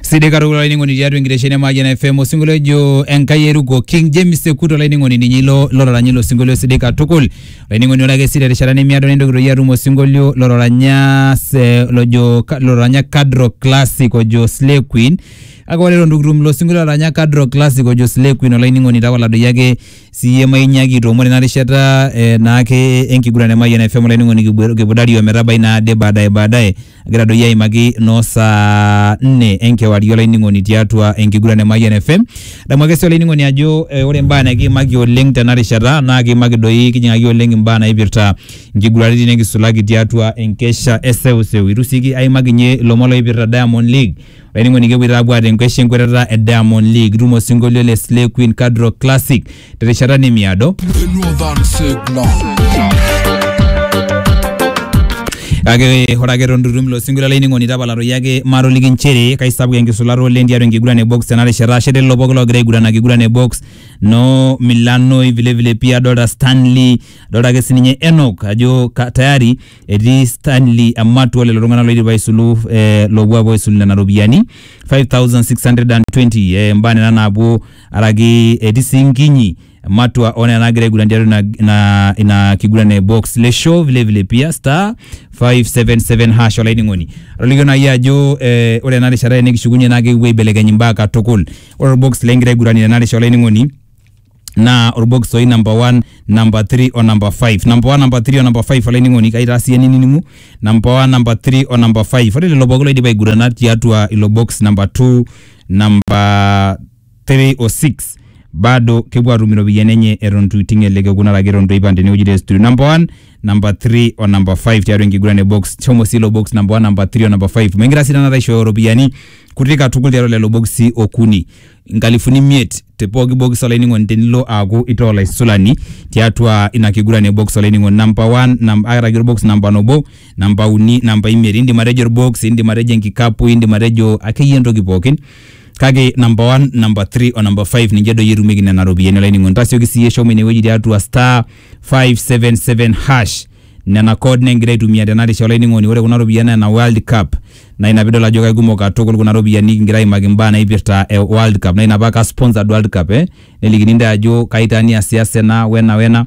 sidai katukul olainining'oni tiatua enkitesheni e Mayian FM osinkolio ojo Enkai eruko King James Sekut olainining'oni ninye ilo lororanya ilo sinkolio sidai katukul olainining'oni ore ake sii terishata nemiado nintoki toi atum osinkolio lororanya se- lojo ka- lororanya Kadro Classic ojo Slay Queen kake ore eton itu kitum ilo sinkolio lororanya Kadro Classic ojo Slay Queen olainining'oni tapala doi ake siyie mainyiaki aitoomon ina rishata eh, naake enkiguran e Mayian FM olainining'oni kibu- kibudari ometabai naade baadaye baadaye Egira doi aimaki noo saa nne enkewarie olainining'oni tiatua enkiguran e Mayian FM. Adamu ake sii olainining'oni ajo eh, ore imbaa nikiimaki oleng tena rishata naa kiimaki doi kijing'aki oleng imbaa naipirta inkiguraritin nikisulaki tiatua enkesha e seuseu. Itu sii ki- aimaki ninye ilomon loipirta Diamond League. Olainining'oni kepuoito aapuo aata enkesha enkwetata e Diamond League. Itum osinkolio le Slay Queen Kadro Classic. terishata nemiado Northern Signal. kake ore ake eton tutum ilo sinkolio olainining'oni tapalatoki ake matoliki nchere kaisapuk enkisulata oleng tiatua enkiguran e box tena rishata ashe lelo pooki loogira aiguran akiguran e box no milanoi vilevile pia adolta stanley adolta ake sininye enok ajo ka, tayari etii stanley amatua lelo tung'anak loidipa aisulu eh, loopuo apuo aisulu nena ropiyiani 5620 eh, mbaa nena naapuo araki etii sii nkinyi matua onena nagira aiguran tiatua ina, ina, ina kiguran e box le show vile vile pia star 577 hash olainining'oni atolikio naaji ajo eh, ore ena rishata enikishukunye naa kekipuo aibelekeny imbaa katukul ore orbox lengira aiguranie tena rishata olainining'oni naa orbox oji number 1 number 3 o number 5 number 1 number 3 o number 5 olainining'oni kaitaa siyie ninining'u number 1 number 3 o number 5 ore lelo pookin loidipa aigurana tiatua ilo box number 2 namba 3 o 6 bado kepuo atum iropiyiani enye eton itu iting ele kekun araki eton itu eipang tenewueji te studio number 1 number 3 o number 5 tiatua enkiguran e box shomo sii ilo box number 1 number 3 o number 5 megira sii tanakata aishooyo iropiyiani kutik katukul tiatua lelo boksi okuni inkalifuni imiet te pooki box olainining'oni tenilo aaku itaa olaisulani tiatua ina kiguran e box olainining'oni number 1 nam, araki orbox namba nabo namba uni namba imiet indim atejo orbox indim atejo enkikapu indim atejo akeyie entoki pookin kake namba one namba three o namba five ninche doi etumieki nena ropiyiani olainining'oni tasioki siiyie shomo inewueji tiatua star 577 hash nena code negira aitumia tena risha olainining'oni ore kuna ropiyiani naa ina world cup naa ina piidol ajo kaikumok katukul kuna ropiyiani kingira aimaki imbaa naipirta eh, world cup naa ina paa ka sponsored world cup eh nelikini intae ajo kai taa niasiasa ena wena wena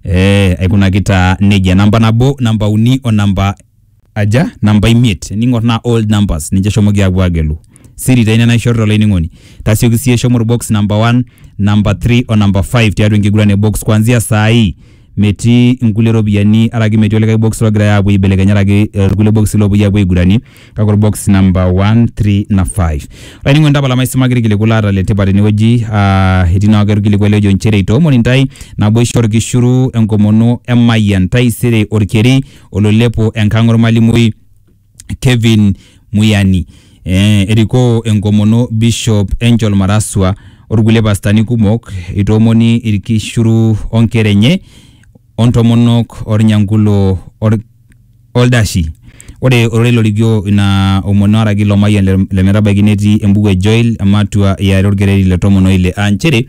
Eh, aikunaki taa nejia namba nabo namba uni o namba aja namba imiet ning'or naa old numbers ninche eshomoki aapuo aagelu siri taa ina naishorita olainining'oni tasioki siyie shomo orbox namba 1 namba 3 o namba 5 tiatua enkiguran e box kuanzia saa hii metii inkulie ropiyiani araki metii olikae box logirae aapuo aibelekeny araki eh, irkulie boxi loopuoi aapuo aiguranie kake orbox namba 1 3 na 5 olainining'oni tapala maisimaki irkiliku laata le tipat tenewueji ah, etii naake orkiliku ele ojo inchere itoomoni intae naboisho orkishuru enkomono emayian taisere orkeri ololepo enkang ormalimui Kevin Muyani eh, erikoo enkomono Bishop Angel Maraswa orkulie pastani kumok itoomoni irkishuru onkera enye ontomonok ornyankulo or Oldashi. Ore ororei lorikio ina omon oaraki ilo mayian le, le metabaiki netii embuku e Joel ematua e are olkereri le tomon o ile aa nchere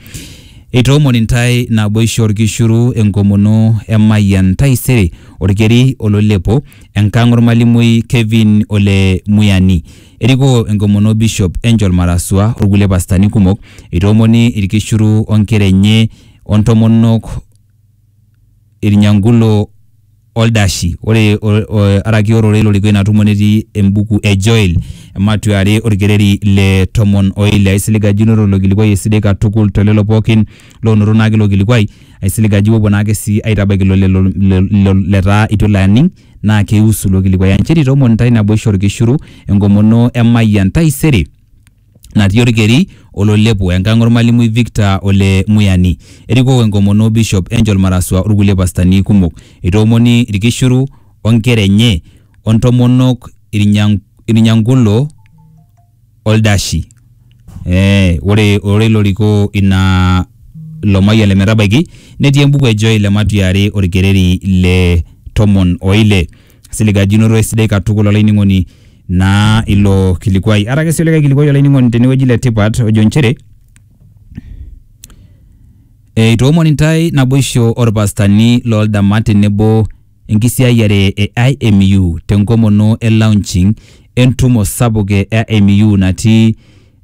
eitoomon intae naboisho olkishuru enkomono emayian taisere olkeri oloilepo enkang olmalimui Kevin Ole Muyani. Erikoo enkomono Bishop Angel Marasua o lkulie pastani kumok eitoomoni ilkishuru o nkera enye o ntomonok Irnyangulo o Ldashi. Ore araki ororei lorikoo ina tumo netii embuku e Joel, ematua e are olkereri le tomon o ile. Aisilig ajo inoto ilo kilikuai esidai katukul to lelo pooki loonoto naake ilo kilikuai. Aisilig ajo ipuopuo naake sii aitabaiki ilo lelo letaa eitu elo aning naa keiusu ilo kilikuai. Ancheri aitoomon intae naboisho o lkishuru, enkomono emayian taisere. natii Olkeri ololepo, enkang olmalimui Victor Ole Muyani. Erikoko enkomono Bishop Angel Marasua olkulie pastani kumok. Itoomoni ilkishiru o nkera enye o ntomonok Irnyankulo o Ldashi. Ee ore ororei lorikoo ina ilo mayian le metabaiki netii embuku e Joel e Matuyari Olkereri le tomon o ile. siligajinoto esidai katukul olainining'oni naa ilo kilikuai arake sii olikae kilikuai olainining'oni tenewueji le tipat ojo nchere eitoomon intae naboisho orpastani looldama tenebo enkisiayiare e IMU tenkomono e launching entumo sapuk e IMU natii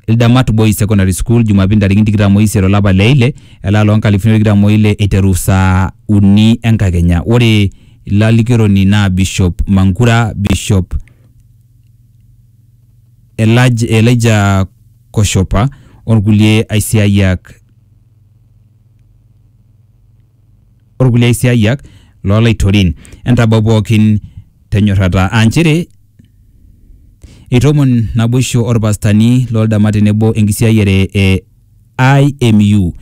Ildamat Boys Secondary School Jumapili ntarikini tikitam oisiet olapa le ile elaa loo nkalifuni tikitam oile eiteru saa uni enkakenya. Ore ilalikioroni naa Bishop Mankura, Bishop Elaj, Elijah Koshopa orkulie aisiayiak o kulie aisiaayiak loo laitorin. Entabau pooki te nyorrata aa nchere eitomon naboisho o lpastani loo ldama tenebo enkisiaayiare e IMU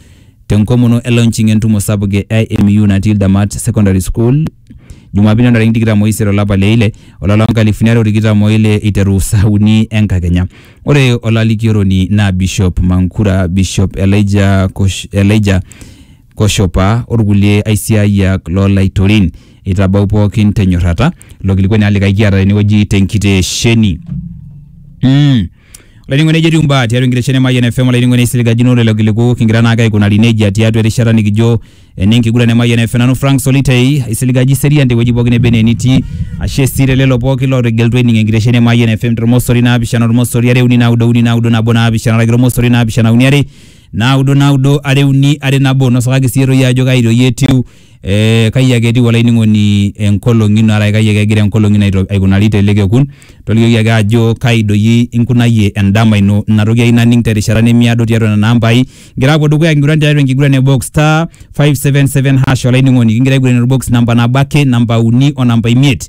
te nkomono e launching e ntumo sapuk e IMU natii Ildamat Secondary School Jumapili o ntarikini tikitam o isiet o lapa le ile, o lari loo nkalifuni are o tikitam o ile eiteru saa uni e nkakenya. Ore olalikioroni naa Bishop Mankura, Bishop Elijah Kosh, Elijah Koshopa o lkulie aisiaayiak loo laitorin. Eitabau pookin te nyorrata. Ilo kilikuai naa likae kiata tene wueji te nkitesheni. Mmh. Olainining'oni nejo etiu mbaa tiatua enkitesheni e Mayian FM olainining'oni aisiligakino lelo kiliku kingira naake aikunari nejia tiatua erishata nikijo ene nkiguran e Mayian FM. Nanu Frank Solitei aisilig ajo iserian te wueji pookin neba enaa enitii. Ashe sii te lelo pookin lootegelutua ening enkitesheni e Mayian FM tolmosori naapishana olmosori are uni naudo uni naudo nabo naapishana araki olmosori naapishana uni are naudo naudo are uni are nabo nosakaki siyie toi ajo kai doi etiu eh, kai ake etiu olainining'oni enkolong ino araki kai ake egira enkolong ino aito- aikunari tele kekun tolikioki ake ajo kai doi inkunayie endama ino ina toki ayieu naning terishata nemiado tiatua nena ambai kigira apuo dukuya kiguran tiatua enkiguran e box star 577 hash olainining'oni kingira aiguran orbox namba nabo ake namba uni o namba imiet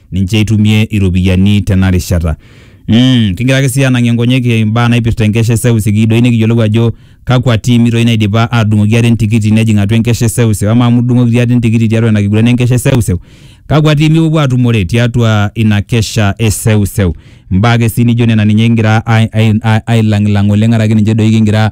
ninche eitumie iropiyiani tena rishata. Mm, kigira ake sii anang'ie nkonyek imbaa naipirta enkesha e seuse kiyieu doi nikiyiolou ajo kakwa tiimi doi naidipa aatudung'oki ate entikiti nejing atua enkesha e seuse amaa amu idung'oki ate entikiti tiatua ina kiguran enkesha e seuse kakwa tiimi ipuopuo aatumore tiatua ina kesha e seuseu. Imbaa ake sii nijo nena ninye kigira ai- ai- ailang'ilang oleng araki ninche doi kigira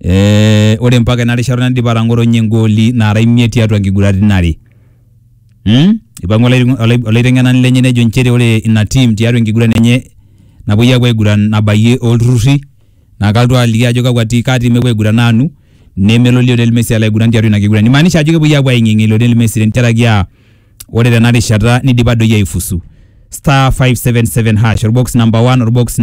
eh, ore mpaka ena rishata naidipa atang'otonye igooli naara imiet tiatua nkiguraritin are hmm? ipang'ua olaiteng- olai- olaiteng'enani lenye nejo inchere ore ina tim tiatua enkiguran enye napuoi apuo aiguran nabayie olturrurri naa kalotu aliki ajo kakwa ti kaa tim epuo aiguran aanu nemelo Lionel Messi alo aiguran tiatua ina kiguran imaanisha ajo kepuoi apuo aing'eng'e Lionel Messi tentiaraki aa ore tena rishata nidipa doi aifusu star 577 hash orbox number 1 orbox number